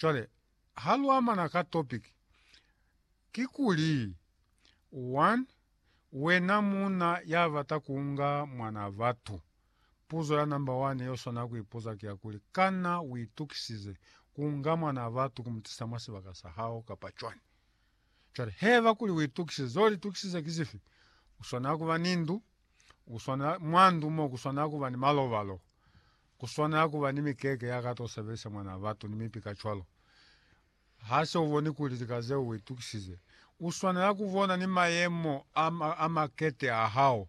Cwale ha lu amana ka topic, kikuli, 1, Wena muuna ya bata ku unga mwanaa batu, puzo ya namba wane ye u swanela ku ipuza ki ya kuli, Kana u itukisize ku unga mwanaa batu ku mu tisa mwa sibaka sa hao kapa cwani? Cwale, heba kuli u itukisize. Z'o litukisize ki zifi? U swanela ku ba ni ndu, u swanela, mwa ndu mo ku swanela ku ba ni malobalo, Ku swanela ku ba ni mikeke ya ka t'o sebelisa mwanaa batu ni mipi kacwalo. Ha se u boni kuli lika zeo u itukisize, u swanela ku bona ni mayemo a, a makete a hao.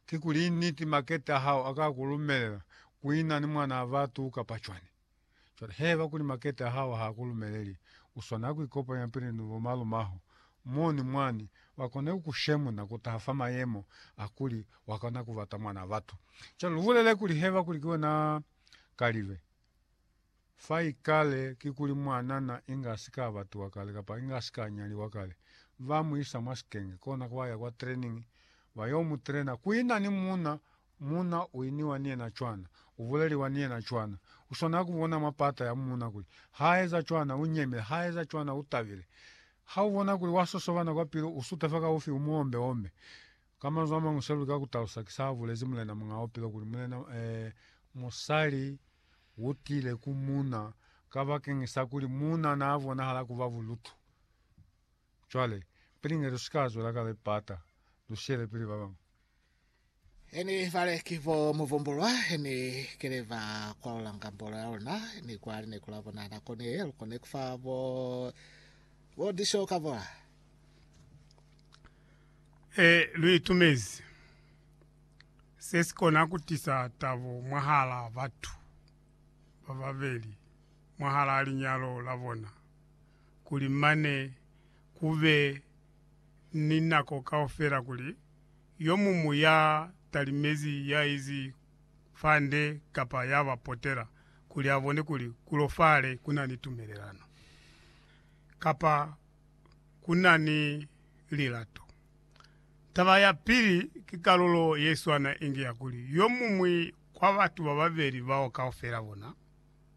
Kikuli niti makete a hao a ka ku lumelela ku ina ni mwanaa batu kapa cwani? Cwale, haiba kuli makete a hao ha a ku lumeleli, u swanela ku ikopanya pili ni bomalumaho Moni mwani wakona ku ku shemuna kutaha fa mayemo a kuli wakona ku bata mwana batu. Cwalo lubulele kuli heba kuli ki wena kalibe. Fa ikale kikuli mwanana inga asika abatiwa kale kapa inga asika anyaliwa kale, ba mu isa mwa sikenge kona kwa ya kwa training ba yo mu trainer kuina ni muuna Muuna u iniwa ni yena cwana, u buleliwa ni yena cwana. U swanela ku bona mwa pata ya muuna kuli ha eza cwana u nyemile, ha eza cwana u tabile. Ha u bona kuli wa sosobana kwa pilu, u sutefa ka ufi u mu ombe-ombe. Ka manzwi a mañwi, seo lika ku talusa ki sa bulezi Mulena Muñaa Bupilo kuli, Mulena, ee, musali u tile ku muuna kabakeñisa kuli muuna naa bonahala ku ba bulutu. Cwale, pili inge lusika zwela kale pata, lushele pili babañwi. Heni bale ki bo muvumbulwa, heni kile ba kwalula ngambolo ya luna, ni kwa lineku la bona nako ne lu kone kufa bo, bo disho ka bola. E, lu itumezi. Se si kona kutisa tabo mwahala batu bababeli, mwahala linyalo la bona. kuli mane ku be ni nako kaufela kuli yo muñwi ya talimezi ya izi fa nde kapa ya ba potela kuli a bone kuli ku lofale ku na ni tumelelano kapa ku na ni lilato. Taba ya pili ki kalulo ye swana inge ya kuli yo muñwi kwa batu ba babeli bao kaufela bona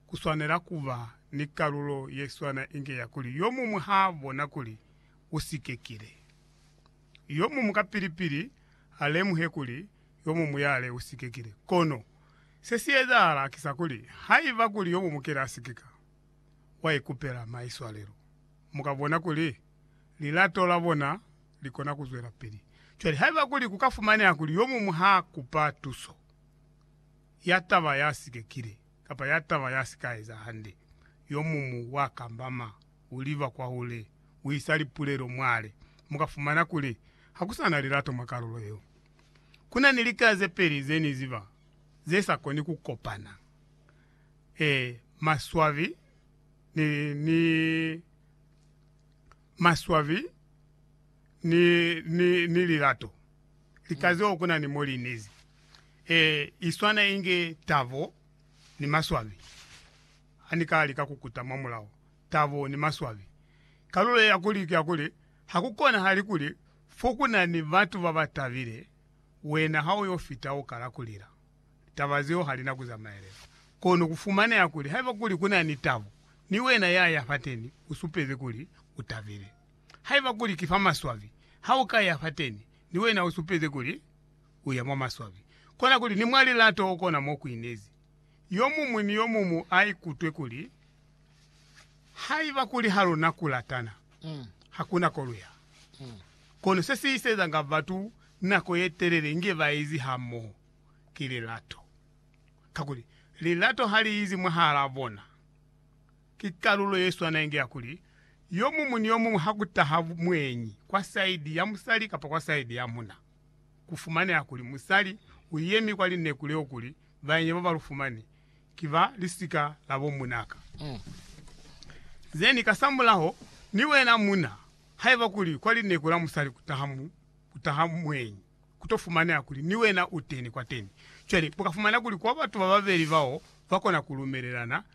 ku swanela ku ba ni kalulo ye swana inge ya kuli yo muñwi ha bona kuli u sikekile. Yo muñwi kapili-pili ha lemuhe kuli yo muñwi yale u sikekile. Kono se si ezahala ki sa kuli, haiba kuli yo muñwi kile a sikeka, wa ikupela maiswalelo. Mu ka bona kuli lilato la bona li kona ku zwelapili cwale haiba kuli ku ka fumaneha kuli yo muñwi ha kupa tuso. ya taba ya si kekile kapa ya taba ya si ka eza hande, yo mumu wa kambama, u liba kwahule, u isa lipulelo mwale. Mu ka fumana kuli ha ku sa na lilato mwa kalulo yeo. Ku na ni lika ze peli ze ni ziba ze sa koni ku kopana, ee, maswabi ni, ni, maswabi ni, ni, ni lilato. Likaziwa kuna ni mo li inezi. E, i swana inge tabo ni maswabi. Ha ni ka lika ku kuta mwa mulao, tabo ni maswabi. Kalulo ye ya kuli ki ya kuli, ha ku konahali kuli fo ku na ni batu ba ba tabile, wena ha u yo fita u kala ku lila. Taba zeo ha li na ku zamaelela. Kono ku fumaneha kuli haiba kuli ku na ni tabo, ni wena ya ya fateni u supezi kuli u tabile. Haiba kuli ki fa maswabi, ha u ka ya fateni, ni wena usupezi kuli uya mwa maswabi. Kona kuli ni mwa lilato okona mo kuinezi yomuñwi ni yomumu aikutwe kuli, Haiba kuli haluna kulatana, hakuna ko luya. Kono se si isezanga batu nako yetelele inge baezi hamoho ki lilato, kakuli lilato haliizi mwahalaa bona. Ki kalulo ye swana inge ya kuli, yo muñwi ni yo muñwi ha ku taha mweñi kwa saidi ya musali kapa kwa saidi ya muna, ku fumaneha kuli musali u yemi kwa lineku leo kuli baenyi ba ba lu fumani ki ba lisika la bo munaka. Zeni, kasamulaho, ni wena muna, haiba kuli kwa lineku la musali ku taha, ku taha mweñi, ku to fumaneha kuli ni wena u teni kwateni. Cwale, mu ka fumana kuli kwa batu ba babeli bao ba kona ku lumelelana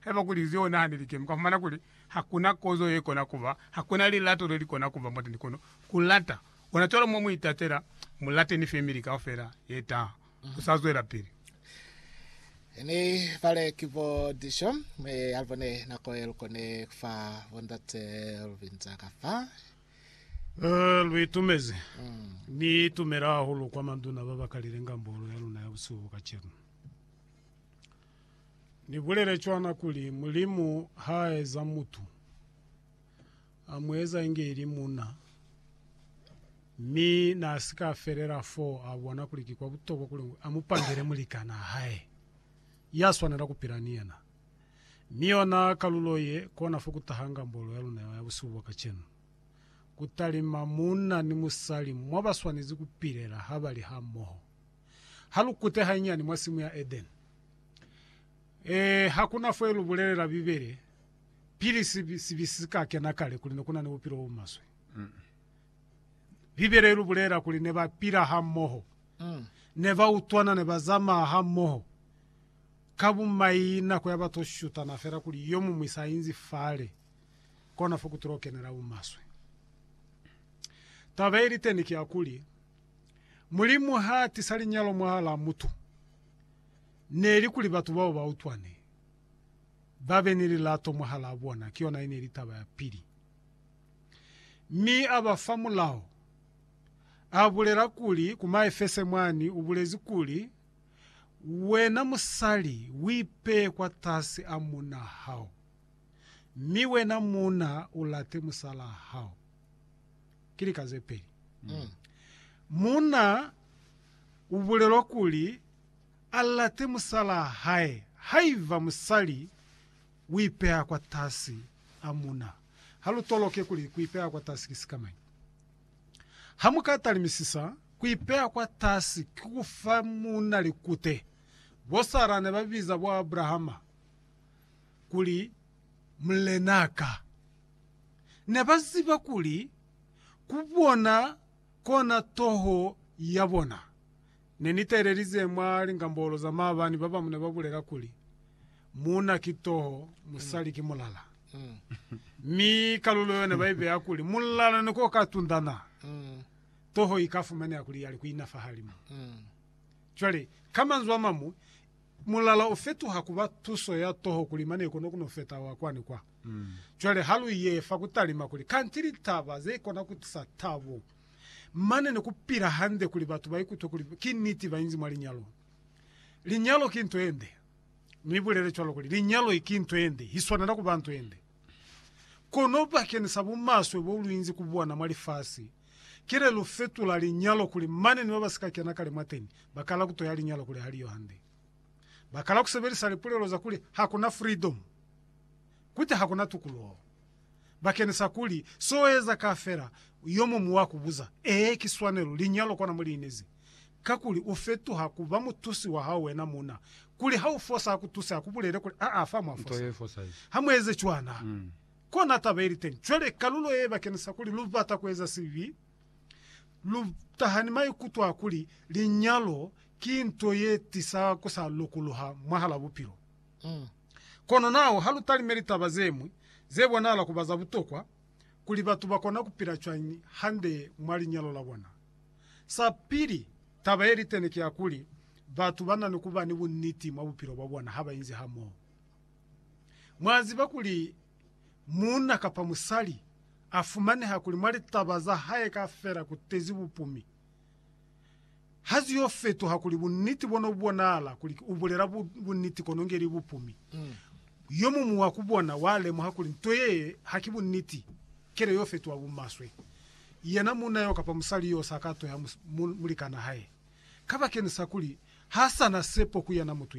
Haiba kuli zeo na ni likemi, kwa fumana kuli hakuna kozo ye kona kuba, hakuna lilato le li kona kuba mwateni kono ku lata. Ona cwalo mo mu itatela, mu late ni femili kaufela ye taha. Ku sa zwelapili. Ni bale ki bo dico, mi ha bo ne nako ye lu kone ku fa bo ndate lu binza ka fa. Ee, lu itumezi. Ni itumela hahulu kwa manduna ba ba kalile ngambolo ya luna ya busihu bo kacenu. Ni bulele cwana kuli, Mulimu ha eza mutu, a mu eza inge ili muna. Mi na si ka felela fo a bona kuli ki kwa butokwa kuli a mu pangele mulikanaa hae, ya swanela ku pila ni yena. Mi yona kalulo ye, kona fo ku taha ngambolo ya luna ya busihu bwa kacenu. Ku talima munna ni musali mwa ba swanezi ku pilela ha ba li hamoho. Ha lu kute hanyinyani mwa simu ya Edeni, e, ha ku na fo lu bulelela Bibele pili sibi, sibi si ka kena kale kuli ne ku na ni bupilo bo maswe. Bibele i lu bulelela kuli ne ba pila ha moho, mm. ne ba utwana, ne ba zamaa ha moho. Ka bumai nako ya ba to shutana fela kuli yo mumwi sa inzi fale, kona fo ku tilo kenela bu maswe. Taba ili teni ki ya kuli, Mulimu ha tisa linyalo mwahalaa mutu, neli kuli batu bao ba utwane, ba be ni lilato mwahalaa bona. Ki yona yeneli taba ya pili. Mi a ba fa mulao, a bulela kuli, ku Maefese mwani, ubulezi kuli, Wena musali, uipeye kwatasi a muuna hao, mi wena muuna, ulate musalaa hao. Ki lika ze peli. Muuna u bulelwa kuli a late musalaa hae haiba musali u ipeha kwatasi a muuna. Ha lu toloke kuli ku ipeha kwatasi ki sikamañi. Ha mu ka talimisisa, ku ipeha kwatasi ki ku fa muuna likute. Bo Sara ne ba biza bo Abrahama kuli Mulenaa ka. Ne ba ziba kuli ku bona kona toho ya bona. Ne ni teelelize mwa lingambolo za maabani ba bamu ne ba bulela kuli, Muuna ki toho, musali ki mulala. Mi kalulo yo ne ba ibeya kuli mulala ne ko ka tundana, toho i ka fumaneha kuli ya li ku ina fahalimu. Cwale, ka manzwi a mamu, Mulala u fetuha ku ba tuso ya toho kuli mane kono ku no feta wa kwa ni kwa. Cwale ha lu ye fa ku talima kuli kanti litaba ze kona ku tisa tabo mane ni ku pila hande kuli batu ba ikutwe kuli ki niti ba inzi mwa linyalo. Linyalo ki nto ye nde. Ni bulele cwalo kuli linyalo ki nto ye nde, i swanela ku ba nto ye nde. Kono bakeñisa bumaswe bo lu inzi ku bona mwa lifasi, Kile lu fetula linyalo kuli mane ni ba ba si ka kena kale mwateni ba kala ku toya linyalo kuli ha li yo hande. Ba kala ku sebelisa lipulelo za kuli ha ku na freedom, kuti ha ku na tukuluho. Ba kenisa kuli, So eza ka fela, yo mumu wa ku buza, Ee, ki swanelo, linyalo kona mo li inezi. Kakuli u fetuha ku ba mutusi wa hao wena muuna, kuli ha u fosa a ku tuse, a ku bulele kuli, Aa, fa mwa fosa. Ha mu eze cwana. Kona taba ili teñi. Cwale kalulo ye bakenisa kuli lu bata kueza sibi, lu taha ni maikuto a kuli linyalo ki nto ye tisa ku sa lokuluha mwahala bupilo. Kono naho ha lu talimeli taba ze ñwi ze bonahala ku ba za butokwa, kuli batu ba kona ku pila cwañi hande mwa linyalo la bona. Sa pili, taba ye liteni ki ya kuli batu ba na ni ku ba ni bunniti mwa bupilo bwa bona ha ba inzi hamoho. Mwa ziba kuli muuna kapa musali a fumaneha kuli mwa litaba za hae kaufela ku tezi bupumi, ha zi yo fetuha kuli buniti bo no bonahala kuli u bulela buniti kono nge li bupumi. Yo muñwi wa ku bona wa lemuha kuli nto yee ha ki buniti, kelo yo fetuha bumaswe. Yena muuna yo kapa musali yo sa ka tuheha mulikana hae, kabakeni sa kuli ha sa na sepo ku yena mutu